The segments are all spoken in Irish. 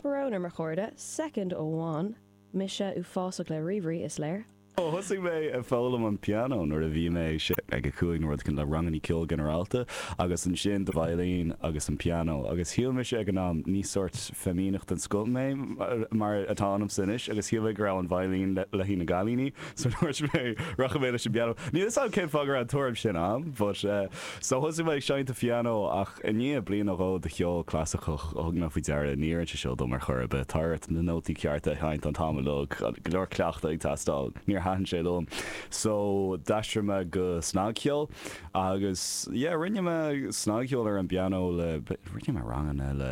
Brón orm a chairde, soicind amháin, mise uafásach le ríomhairí, is léir. Ó thosaigh mé ag foghlaim an pianó nuair a bhí mé sé, ag a cúig nó rud éigin, le rangannaí ceoil ginearálta agus ansin do veidhlín agus an pianó agus shíl mise ag an am, ní sórt feimineach den scoth mé mar atá ionamsa anois, agus shíl mé go raibh an veidhlín le haghaidh na gcailíní so dúirt mé rachaidh mé leis an bpianó. Níl 'fhios a'm cén fáth go raibh an tuairim sin a'm but. So thosaigh mé ag seinnt an phianó ach i ndiaidh bliain nó dhó de cheol clasaiceach thug mé faoi deara ní oireann sé seo dom ar chor ar bith. Tá ort na nótaí cearta a sheinnt an t-am uilig, go leor cleachtadh ag teastáil. Níor thaitin sé liom so d'aistrigh mé go snagcheol agus yeah rinne mé snagcheol ar an bpianó le, rinne mé ranganna le,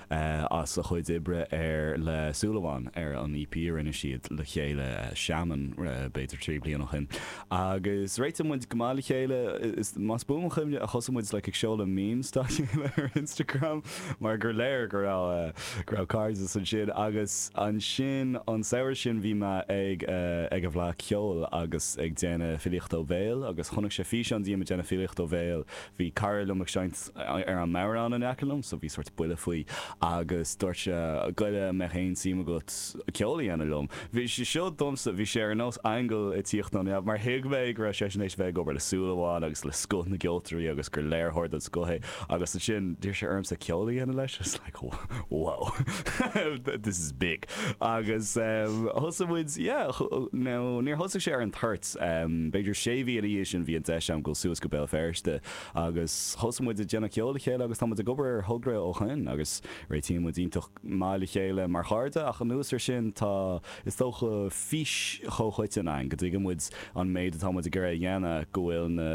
as a chuid oibre ar le Súil Amháin, ar an EP a rinne siad le chéile, Shammen, b'fhéidir trí bliana ó shin. Agus réitigh muid go maith le chéile, is más buan mo chuimhne, thosaigh muid like ag seoladh memes dá chéile ar Instagram mar gur léir go raibh go raibh cairdeas ansin. Agus ansin an samhradh sin bhí mé ag ag an bhFleadh Cheoil agus ag déanamh filíochta ó bhéal agus chonaic sé físeán díom ag déanamh filíochta ó bhéal, bhí cara liom ag seinnt. ar an mbodhrán in aice liom, so bhí sórt buille faoi, agus dúirt sé, gabh i leith an mbeadh aon suim agat ceol a dhéanamh liom? Bhí sé seo domsa, bhí sé ar nós aingeal ag tíocht ó neamh, mar thuig mé go raibh seisean théis bheith ag obair le Súil Amháin agus le scoth na gceoltóirí agus gur léiritheoir den scoth é, agus ansin d'iarr sé ormsa ceol a dhéanamh leis, I was like, wow, this is big, agus thosaigh muid, yeah, now níor thosaigh sé ar an toirt, b'fhéidir sé mhí ina dhiaidh sin bhí an deis agam gabháil suas go Béal Feirste agus thosaigh muid ag déanamh ceoil le chéile agus tá muid ag obair ar thogra ó shoin agus réitíonn muid iontach maith le chéile mar chairde ach anuas ar sin tá is dócha fís chomhchoiteann againn go dtuigeann muid an méid atá muid ag iarraidh a dhéanamh, go bhfuil na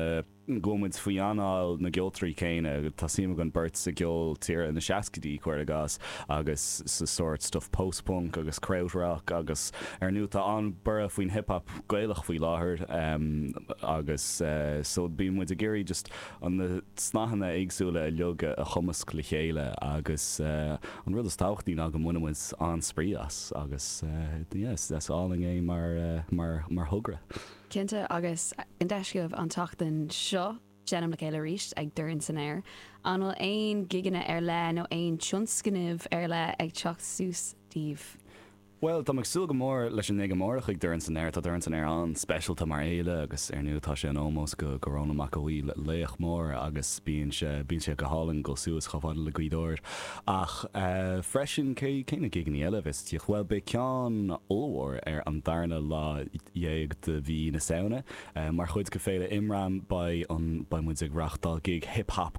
go bhfuil muid faoi anáil na gceoltoirí céanna, tá suim againn beirt sa gceol tíre na seascaidí cuir i gcás agus sa sórt stuif post-punk agus kraut rock agus ar ndóigh tá an-borradh faoin hip hop. Gaelach faoi láthair agus so bíonn muid ag iarraidh just na snáitheanna éagsúla uilig a chumasc le chéile agus an rud is tábhachtaí ná go mbaineann muid an-spraoi as agus yeah is álainn é mar thogra. Cinnte agus an deis agaibh an tseachtain seo seinm le chéile arís ag Dorn San Aer. An bhfuil aon gigeanna ar leith nó aon tionscnaimh ar leith ag teacht suas daoibh? Bhuel, táim ag súil go mór leis an ngig amárach ag Dorn San Aer. Tá Dorn San Aer an-speisialta mar fhéile agus ar ndóigh tá sé in ómós go go Rónán Mac Aodha Bhuí, laoch mór agus bíonn sé bíonn sé go hálainn dul suas chomh fada le Gaoth Dobhair. Ach freisin cé cé na gigeannaí eile a bheas istigh? Bhuel, beidh ceann ollmhór ar an darna lá dhéag de mhí na Samhna. Mar chuid de Fhéile Imram beidh an beidh muid ag reáchtáil gig hip hop